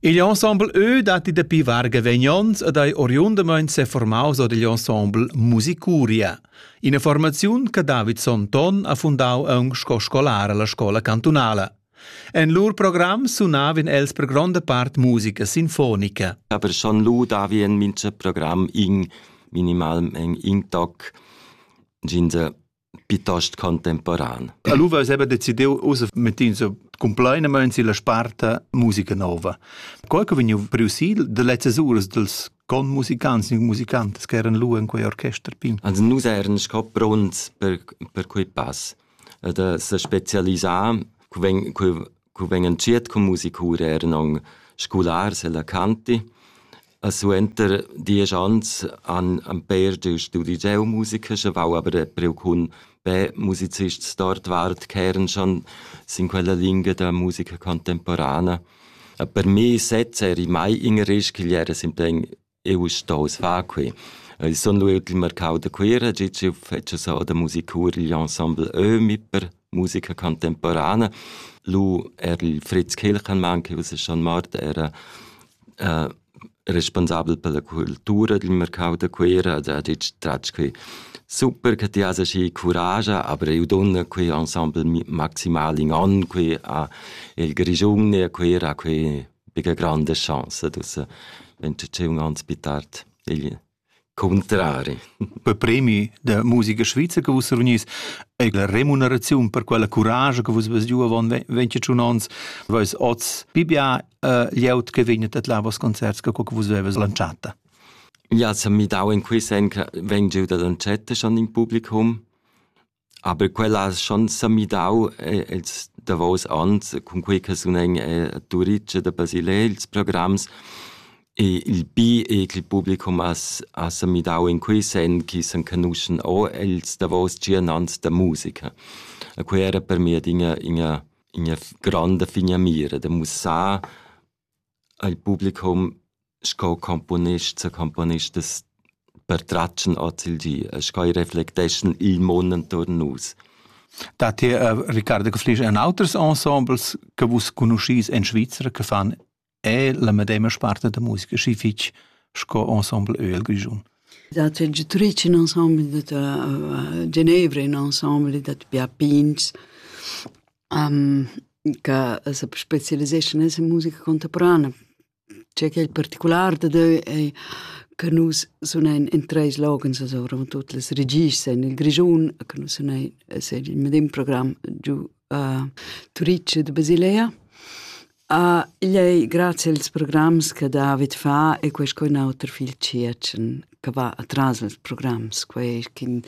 Igl ensembleeu dat dapi varga vegnons ed ei oriundamain seformaus or digl ensemble Musicuria, ina formaziun che David Sonton ha fundau aunc sco scolar alla scola cantunala. En lur program sunavan els per gronda part musica sinfonica. Aber schon lu davien mincha program in minimalmeng in toc. Ginde piuttost contemporan. Allura aveva decidiu ussa mettins cumplainamain silla sparta musica nova. Quai che vegniu priusil de lezzas uras dels conmusicants e musicantes che eran lu in quei orchester pin. Also nus eran sco pronts per per quei pass da se specialisar, cu ven cu cu vegn entschiet cun musicura eran aunc scolars ella canti e suenter diesch anns han han pér giu studi geomusica schevau aber priu cun be musicists dort vart ch'eran schon sin quella lingia da musica contemporana e per mi sez eri mai in risch ch'igl era simpel Eu uss stoust far que. Eu sun lueut il marcau da Cuira giò ch'eu fetscha so da musicur igl ensemble Ömi per musica contemporana. Lu er il Fritz Kilchenmann, che uss schon mort, era äh, responsabel per la cultura dil marcau da Cuira ed ha ditg tratg que super che ti has aschi curage, aber eu donna que ensemble maximal in on que a il Grischun e a Cuira a que bigga grande chance dus vegn tut tscheu ans bitart igl contrari. Per premi da musica svizza che vus reunís è la remuneraziun per quella courage che vus vas giù avant 21 ans, vais oz pibia uh, lieut che vegnet at là vos concerts che che vus veves lanciata. Ja, se mi dau in quei sen che veng giù da lancetta schon in publicum Aber quellas sch'han semidau ils davos onns cunquei che sunen Turitg da Basilea ils programs e il bi e ch'il publicum as ha semidau in quei senn chi s'enconuschen o ils davos tschien ans da musica. E quei era per mi adina ina ina f- granda finamira da mussar E'l publicum sco componist secomponist es pertratg'n ozilgi e sco eir reflecteschan il mun intuorn nus. Dat ti, Riccardo, che flisch en auters ensembles che vus conuschis en Svizra che fan er la medema sparte da musica, schi fich sco ensemble Öl Grischun? Dat c'è Giutric in ensemble dat a Genevra, in ensemble dat Pia Pins. che se specialiseschan nella musica contemporanea. Tgei ch'ei particular dad eu ei che nus sunein in treis loghens, also tut las regists en il Grischun, che nus sunein, es il medem program giu a Turitg ed a Basilea. Ah, igl ei grazie als programs che David fa e quei sco in auter fil tschiertschen che va atras als programs, quei che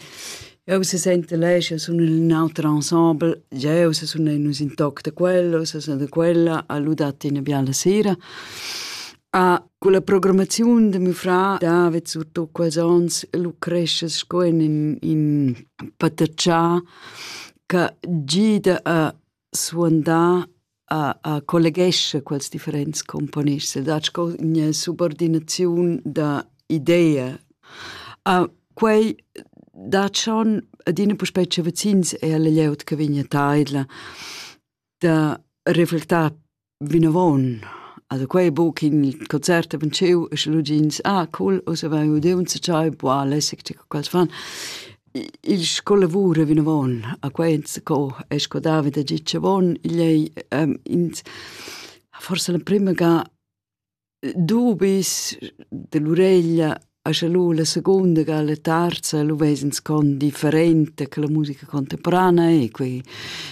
eu se sente lei, io sono in auter ensemble, eu se sono in un toc da quello, se sono da quella, ha ludat in biala sera. Ah, con la programmazione de mio fra David surtut quels ons lucresce sco in in pataccià che gida a suandà a, a colleghesce quels differents componists e dat sco ina subordinaziun da idea. A quei dat schon adina puspei vecins e alla glieud che vegn a taidla da reflectar Vinavon. Also quei buc in concert haben giu e sche lu gins ah cool ussa vai udiu un tschai buca lässig che quels fan. Il scola lavura vinavon a quei enzaco e sco David ha git schon bon igl ei ins forse la prima ga dubis dell'ureglia a scha lu la secunda ga la terza lu vesens con differente che la musica contemporanea e quei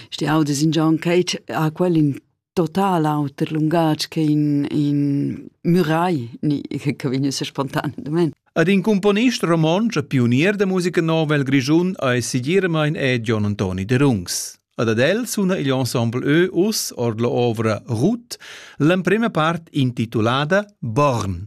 sti audes in John Cage ha quel in total auter lungatg che in in Murai ni che vegn ussa spontaneamente Ad in componist romontsch e pionier da musica nova il Grischun ei segiramain è Gion Antoni Derungs. Ad ad el suna igl ensemble Ö uss ord la ovra Ruth l'emprema part intitulada Born.